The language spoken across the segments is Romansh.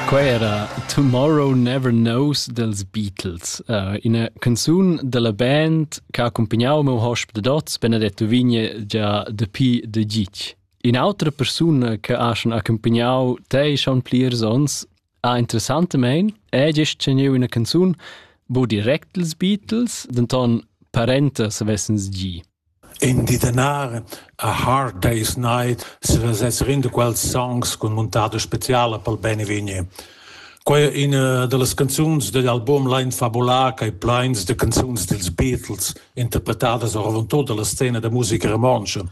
Quai era Tomorrow Never Knows dels Beatles, uh, ina canzun della band che ha accompagnato meu hosp de Dots, Benedetto Vigne, già dapi de Gitg. Un'altra persona che ha schon accompagnato te schon plirs ons, ha interessantemente è gest teniu una canzun, bo direct dels Beatles, denton parenta se vessens gi. In di danar a Hard Day's Night svesess renda quels songs cun muntada speciala pel beinvegni. Quai è ina da las canzuns dad album Lain fabular ch'ei pleins da canzuns dils Beatles, interpretadas oravontut dalla scena da musica romontscha.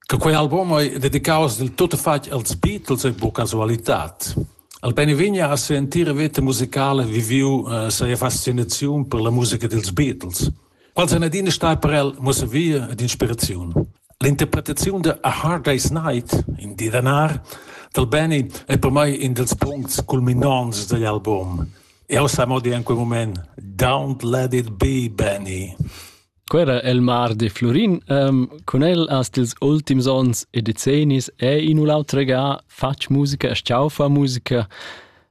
Che quei album ei dedicaus dil tuttafatg als Beatles ei buca casualitad. El beinvegni ha sia entira veta musicala viviu eh, sia fascinaziun per la musica dils Beatles. Quels han adina stai per el muossavia ed inspiraziun. L'interpretaziun da A Hard Day's Night, in di da nar, dal Benny è per mai in dals puncts culminants dagl album. Jau sa mo dir en quel moment, Don't let it be, Benny. Quera el mar de Florin. Um, con el hast ils ultims ons e decennis è in u l'autre ga fatg musica e sciaufa musica.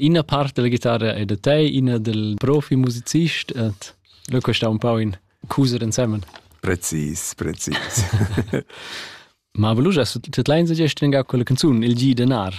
Ina part della chitarra è da te, ina del profimusicist et lo questa un po in cuser insemmen. Precis, precis. Ma volugia su tut lein sa gest venga quella canzun il gi denar.